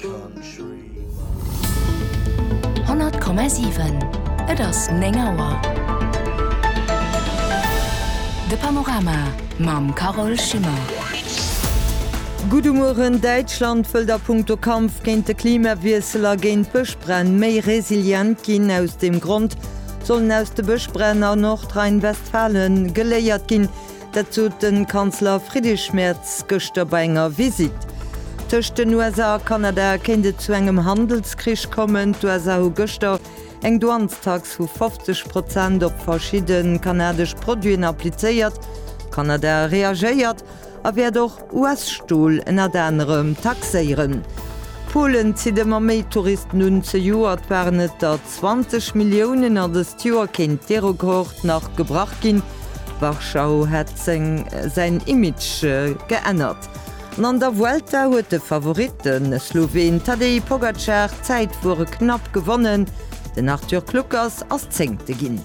100,7 Et ass 9 Auer. De Panorama mam Carole Schimmer. Gudde Mueren, Däitschland wëllt a punkto Kampf géint de Klimawiessel a géint d'Bëschbränn méi resilient ginn. Aus deem Grond sollen aus de Bëschbränn a Nordrhein-Westfalen geléiert ginn. Dat sot de Kanzler Friedrich Merz gëschter bei enger Visitt. Tëscht den USA a Kanada kéint et zu engem Handelskrich kommen. D'USA hu gëschter eng Douanestax vu 50 Prozent op verschidde kanadesch Produiten applizéiert. Kanada reagéiert a wäert och US-Stol ënnert anerem taxéieren. Polen zitt ëmmer méi Touristen un, zejoert waren et der 20 Milliounen a dëst Joer kéint dee Rekord nach gebrach ginn. Warschau hätt säin Image geännert an an der Vuelta huet de Favorit, de Sloween Tadej Pogacar, d'Zäitfuere knapp gewonnen. Den Arthur Kluckers ass Zéngte ginn.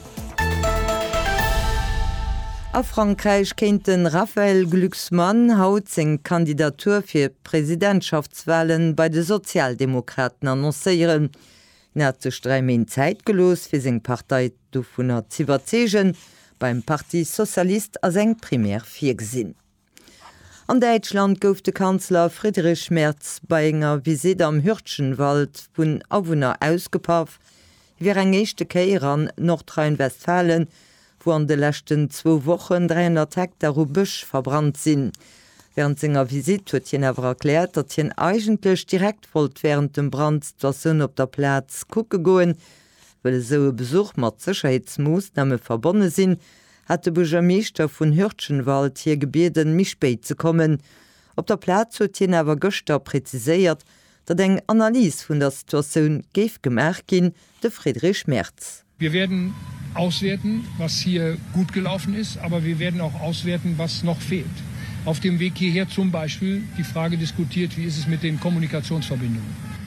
A Frankräich kéint de Raphaël Glucksmann haut seng Kandidatur fir d'Presidentschaftswale bei de Sozialdemokraten annoncéieren. Hien hat sech dräi Méint Zäit gelooss, fir seng Partei dovunner z'iwwerzeegen. Beim Parti socialiste ass eng Primaire virgesinn. An Däitschland gouf de Kanzler Friedrich Merz bei enger Visitt am Hürtgenwald vun Awunner ausgepaff, hie wier eng éischte Kéier an Nordrhein-Westfalen, wou an de leschten zwou Wochen 300 Hektar u Bësch verbrannt sinn. Wärend senger Visitt huet hien awer erkläert, datt hien eigentlech direkt wollt wärend dem Brand d'Situatioun op der Plaz kucke goen, well esou e Besuch mat Sécherheetsmoossname verbonne sinn, hat de Buergermeeschter vun Hürtgenwald hie gebieden, méi spéit ze kommen. Op der Plaz huet hien awer gëschter präziséiert, datt eng Analys vun der Situatioun géif gemaach ginn, de Friedrich Merz. Wir werden auswerten, was hier gut gelaufen ist, aber wir werden auch auswerten, was noch fehlt. Auf dem Weg hierher zum Beispiel die Frage diskutiert, wie ist es mit den Kommunikationsverbindungen?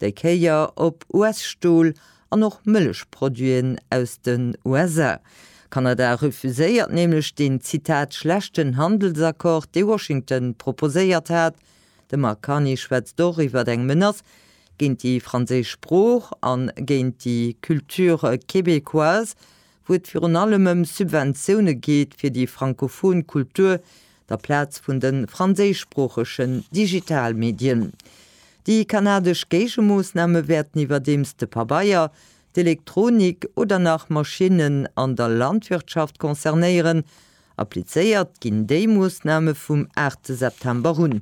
Déi Kéier op US-Stol an och Mëllechproduiten aus den USA. Kanada refuséiert nämlech deen, Zitat, schlechten Handelsaccord, dee Washington proposéiert hat. De Mark Carney schwätzt och iwwer eng Menace géint déi franséisch Sprooch a géint déi Culture québécoise, wou et virun allem ëm Subventioune geet fir déi frankofon Kultur, der Plaz vun de franséischsproochegen Digitalmedien. Déi kanadesch Géigemoossname wäerten iwwerdeems de Pabeier, d'Elektronik oder nach Maschinnen an der Landwirtschaft concernéieren. Applizéiert ginn déi Moossname vum 8 September un.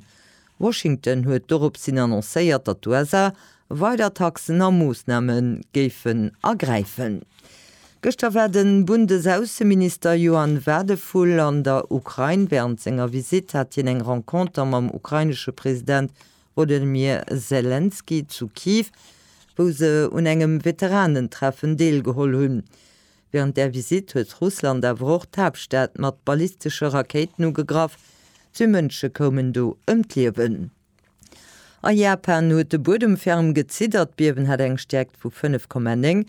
Washington huet dorops hin annoncéiert, datt d'USA weider Taxen a Moossname géifen ergräifen. Gëschter war de Bundesaußenminister Johann Wadephul an der Ukrain. Wärend senger Visitt hat hien eng Renconter mam ukrainesche President Wolodymyr Selenskyj zu Kiew, wou se un engem Veteranentreffen deelgeholl hunn. Wärend där Visitt huet Russland awer och d'Haaptstad mat ballistesche Rakéiten ugegraff. Zwee Mënsche koumen do ëm d'Liewen. A Japan huet de Buedem ferm geziddert. D'Biewen hat eng Stäerkt vu 5,9.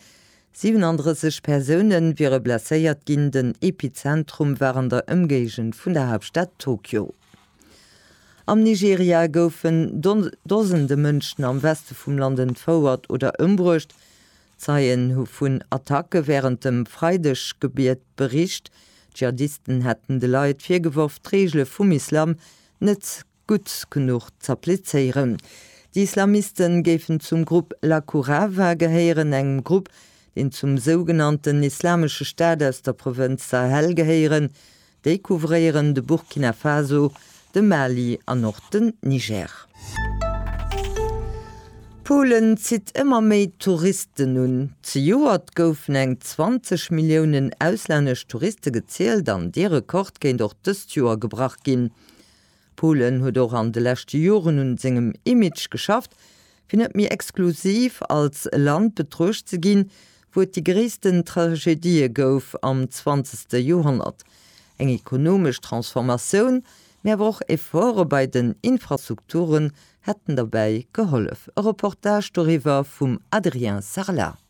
37 Persoune wiere blesséiert ginn. Den Epizentrum war an der Ëmgéigend vun der Haaptstad Tokio. Am Nigeria goufen Dosende Mënschen am Weste vum Land entfouert oder ëmbruecht. Zeien hu vun Attacke wärend dem Freideggebiet bericht. D'Dschihadisten hätten de Leit virgeworf, d'Reegele vum Islam net gutt genuch z'applizéieren. Déi Islamiste géifen zum Grupp Laqurava gehéieren, engem Grupp, deen zum sougenannten Islamesche Staat aus der Provënz Sahel gehéieren Déi couvréieren de Burkina Faso, de Mali an och den Niger. Polen zitt ëmmer méi Touristen un. Zejoert goufen eng 20 Milliounen auslännesch Touriste gezielt an dee Rekord kéint och dëst Joer gebrach ginn. Pullen huet och an de leschte Joren un sengem Image geschafft, fir net méi exklusiv als Land betruecht ze ginn, wou et déi gréissten Tragedië gouf am zwanzegste Joerhonnert. Eng ekonomesch Transformatioun, mee awer och Efforte bei den Infrastrukturen hätten derbäi gehollef. E Reportage doriwwer vum Adrien Sarlat.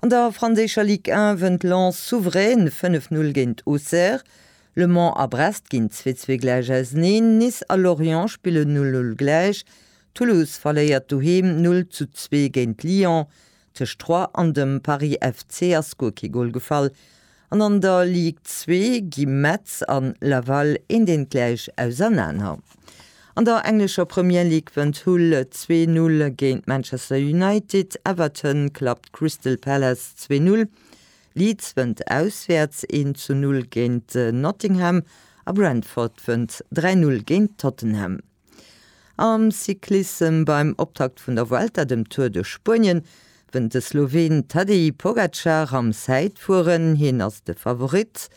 An der franséischer Ligue 1 wënnt Lens souverän 5-0 géint Auxerre. Le Mans a Brest ginn 2-2 gläich auseneen. Nice a Lorient spillen 0-0 gläich. Toulouse verléiert doheem 0 zu 2 géint Lyon. Tëscht Troyes an dem Paris FC ass guer kee Gol gefall. An an der Ligue 2 gi Metz an Laval een deen gläich ausernaner. An der englescher Premier League wënnt Hull zwee Null géint Manchester United, Everton klappt Crystal Palace zwee Null, Leeds wënnt auswäerts een zu Null géint Nottingham a Brentford wënnt dräi Null géint Tottenham. Am Cyclissem beim Optakt vun der Vuelta, dem Tour de Spuenien, wënnt de Sloween Tadej Pogacar am Zäitfueren. Hien ass de Favorit.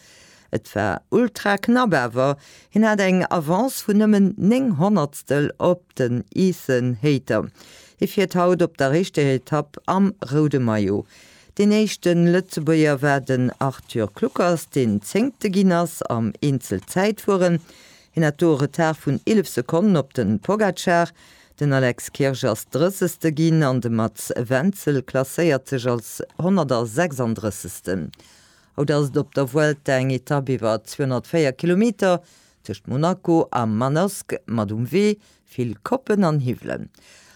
Et war ultra knapp, awer hien hat eng Avance vun nëmmen 9 Honnertstel op den Ethan Hayter. Hie fiert haut op der éischter Etapp am roude Maillot. Deen éischte Lëtzebuerger war den Arthur Kluckers, deen Zéngte ginn ass am Eenzelzäitfueren. Hien hat do e Retard vun 11 Sekonnen op de Pogacar. Den Alex Kirsch ass Drëssegste ginn an de Mats Wenzel klasséiert sech als 136. Haut ass et op der Vuelta eng Etapp iwwer 204 Kilometer tëscht Monaco a Manosque mat um Wee vill Koppen an Hiwwelen.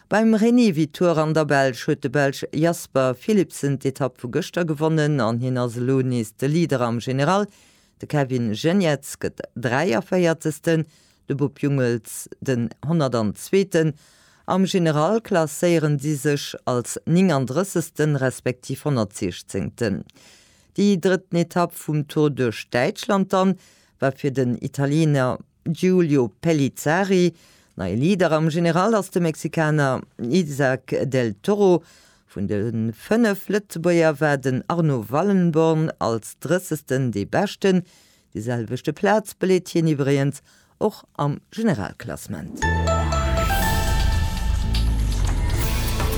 Beim Rémy Vitour an der Belsch huet de Belsch Jasper Philipsen d'Etapp vu gëschter gewonnen an hien ass elo nees de Leader am General, De Kevin Geniets gëtt 43. De Bob Jungels den 102. Am General klasséieren si sech als 39. respektiv 116. Déi drëtten Etapp vum Tour duerch Däitschland dann war fir den Italiener Giulio Pellizzari, Neie Leader am General ass de Mexikaner Isaac del Toro. Vun de 5 Lëtzebuerger war den Arno Wallenborn als drëssegsten dee beschten. Déi selwechte Plaz beleet hien iwwregens och am Generalklassement.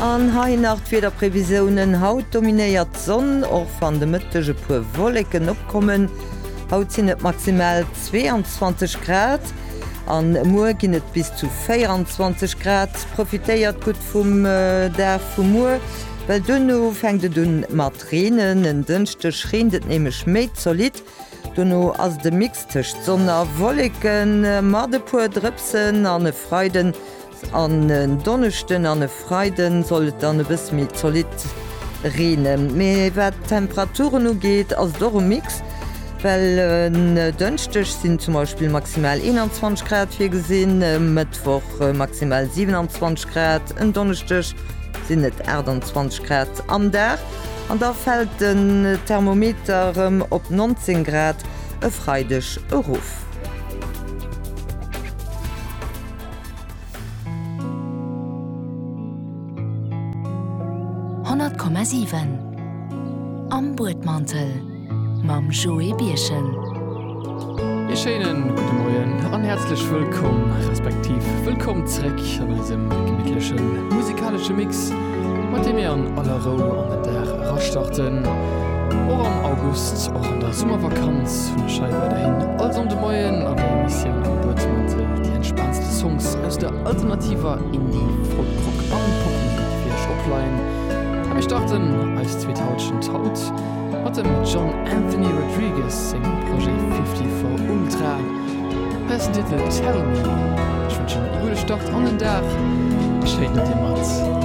An hei nach d'Wiederprevisiounen, Haut dominéiert d'Sonn, och wann de Mëtteg e puer Wolleken opkommen. Haut sinn et maximal 22 Grad an muer ginn et bis zu 24 Grad. Profitéiert gutt vum Dag vu muer, well duerno fänkt et un mat reenen. En Dënschdeg reent et nämlech méi zolidd, dono ass et e Mix tëscht Sonn a Wolleke mat e puer Drëpsen an e Freiden An en Donneschden an e Freiden soll et dann e bësse méi zolidd reenen. Mee wat d'Temperaturen ugeet, ass et och e Mix, well en Dënschdeg sinn zum Beispill maximal 21 Grad virgesinn, e Mëttwoch maximal 27 Grad, en Donneschdeg sinn et 28 Grad am Dag an da fält den Thermometer erëm op 19 Grad e Freideg erof. Honnert Komma siwen Am Buedmantel mam Joé Birchen. Ee schéinen gudde Moien an häerzlech wëllkomm, respektiv wëllkomm zréck an eisem gemittlechen musikalesche Mix, mat deem mir an aller Rou an den Dag erastarten, och am August, och an der Summervakanz. Podcast vun der Schei weiderhin all Sonnde Moien an der Emissioun am Buedmantel déi entspaantste Songs aus der alternativer Indie, Folk, Rock an Popmusek fir Iech opleien. A mir starten eis zweet Halschent haut mat dem John Anthony Rodriguez sengem Projet 54 Ultra. Hei ass den Titel Tell Me. Ech wënschen e gudde Start an den Dag a schéin, datt Dir mat.